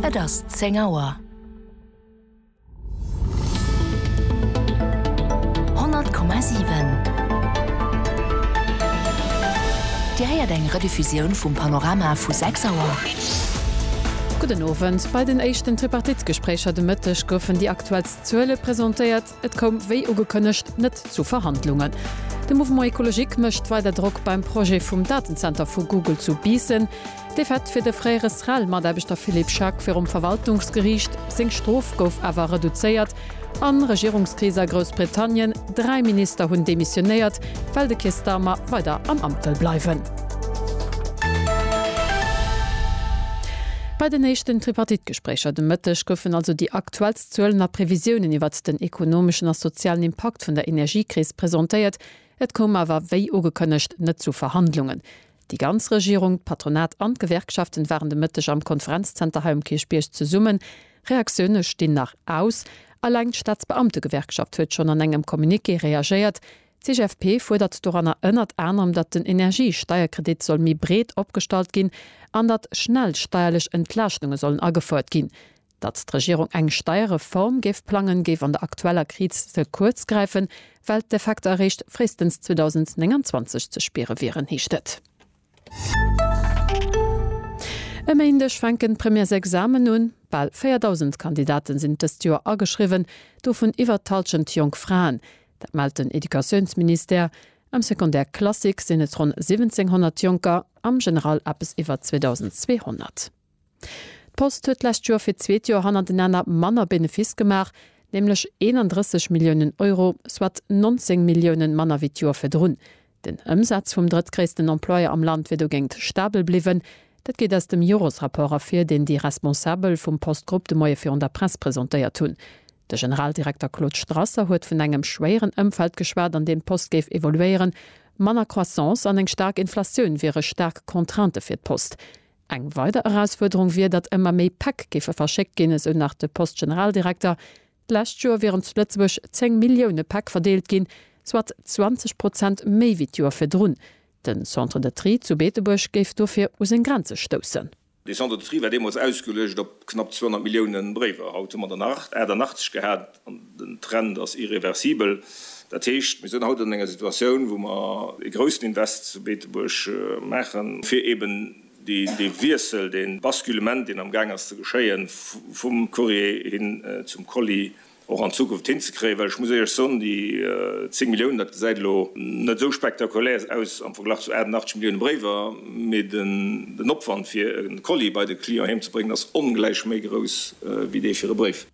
Et ass zéng Auer. Honnert Komma siwen. Dir héiert eng Rediffusioun vum Panorama vu sechs Auer. Gudden Owend. Bei den éischten Tripartite-Gespréicher de Mëtteg goufen déi aktuellst Zuele presentéiert. Et koum wéi ugekënnegt net zu Verhandlungen. De Mouvement Ecologique mécht weider Drock beim Projet vum Datenzenter vu Google zu Biissen. D'Defaitte fir de fréiere SREL-Mataarbechter Philippe Schack virum Verwaltungsgeriicht. Seng Strof gouf awer reduzéiert. A Regierungskris a Groussbritannien, Dräi Minister hunn demissionéiert, well de Keir Starmer weider am Amt wëll bleiwen. Bei den éischten Tripartite-Gespréicher de Mëtteg goufen also déi aktuell. Zuelen a Previsiounen iwwert den ekonomeschen a sozialen Impakt vun der Energiekris presentéiert. Et koum awer, wéi ugekënnegt, net zu Verhandlungen. Déi ganz Regierung, d'Patronat an d'Gewerkschaften waren de Mëtteg am Konferenzzenter hei um Kierchbierg zesummen. Reaktioune stinn nach aus. Eleng d'Staatsbeamtegewerkschaft huet schonn an engem Communiqué reagéiert. D'CGFP fuerdert doranner ënnert anerem, datt den Energiesteierkredit soll méi breet opgestallt ginn an datt schnell steierlech Entlaaschtunge sollen agefouert ginn. Datt d'Regierung eng Steierreform géif plangen, géif an der aktueller Kriz ze kuerz gräifen, well d'Effekter eréischt fréistens 2029 ze spiere wieren, heescht et. E Méindeg fänken d'Premièresexamen un. Bal 4.000 Kandidate sinn dëst Joer ageschriwwen, dovun iwwer d'Hallschent jonk Fraen. Dat mellt den Educatiounsministère. Am Secondaire classique sinn et ronn 1.700 Jonker, am General eppes iwwer 2.200. D'Post huet d'lescht Joer fir d'zweet Joer hannertenaner manner Benefiss gemaach, nämlech 31 Milliounen Euro, soit 19 Milliounen manner wéi d'Joer virdrun. Den Ëmsaz vum drëttgréissten Employeur am Land wier dogéint stabel bliwwen. Dat geet aus dem Joresrapport ervir, deen déi Responsabel vum Post-Grupp de Moie virun der Press presentéiert hunn. De Generaldirekter Claude Strasser huet vun engem schwéieren Ëmfeld geschwat, an deem d'Post géif evoluéieren. Manner Croissance an eng staark Inflatioun wiere staark Contraintë fir d'Post. Eng weider Erausfuerderung wier, datt ëmmer méi Päck géife verschéckt ginn, esou nach de Post-Generaldirekter. D'lescht Joer wieren zu Lëtzebuerg 10 Millioune Päck verdeelt ginn, soit 20 Prozent méi wéi d'Joer virdrun. Den Centre de Tri zu Beetebuerg géif dofir u seng Grenze stoussen. De Centre de Tri war deemools ausgeluecht op knapp 200 Millioune Bréiwer. Haut hu mer der nach 88 gehat. An den Trend ass irreversibel. Dat heescht, mir sinn haut an enger Situatioun, wou mer ee groussen Invest zu Beetebuerg maachen, fir eeben dee Wiessel, dee Basculement, deen am Gaang ass ze geschéien, vum Courrier hin zum Colis, och an Zukunft hinzekréien. Well ech muss Iech soen, déi 10 Milliounen, dat gesäit elo net esou spektakulär aus am Verglach zu 88 Millioune Bréiwer, mee den Opwand, fir e Colis bei de Client heemzebréngen, ass ongläich méi grouss wéi dee fir e Bréif.